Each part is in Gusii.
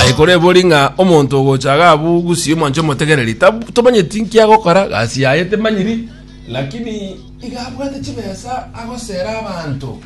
Aye kore ebori ng'a omonto ogocha iga abwo gusii omwanche omotegereri tab- tomanyeti nki agokora gasi yaye temanyiri lakini iga abwate chibesa agosera abanto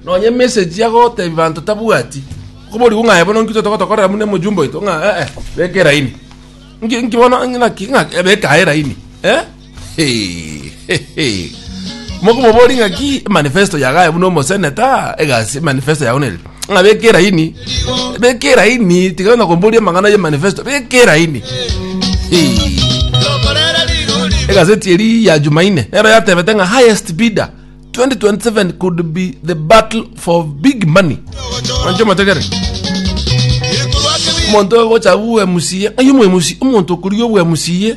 nonye emessage agotebi banto tabwati koborigwe ng'a aye bono nki totogotokorera buna omojumbe oito ng'a eh eh beka eraini nki nki bono naki ng'a beka aye eraini eh. mokomobori ng'aki manifesto yagaye buna omoseneta egasi manifesto yago neri ng'a beka eraini beka eraini tiga na komboria amang'ana ye manifesto beka eraini egazeti eri ya jumaine nero yatebete ng'a highest bidder 2027 could be the battle for big money mancho mategere omonto ogochabu mca ng'ai omoemusi omonto okoria obwemusie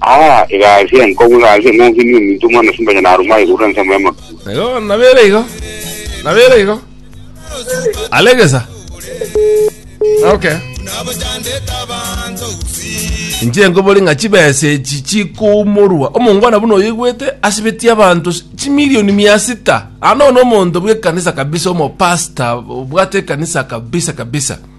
Aa, egasi enkong'u egasi eng'onge niyo ominto omwana simba onye naruma aye korwa ensemo y'amakuru. Igo bono nabere igo. Nabere igo. Alegesa. Okay. Inche nkobori ng'a chibesa echi chikomorwa omongwana buna oyoigwete asibetie abanto s- chimilioni mia sita ano nomonto bw'ekanisa kabisa omopasta obwate ekanisa kabisa kabisa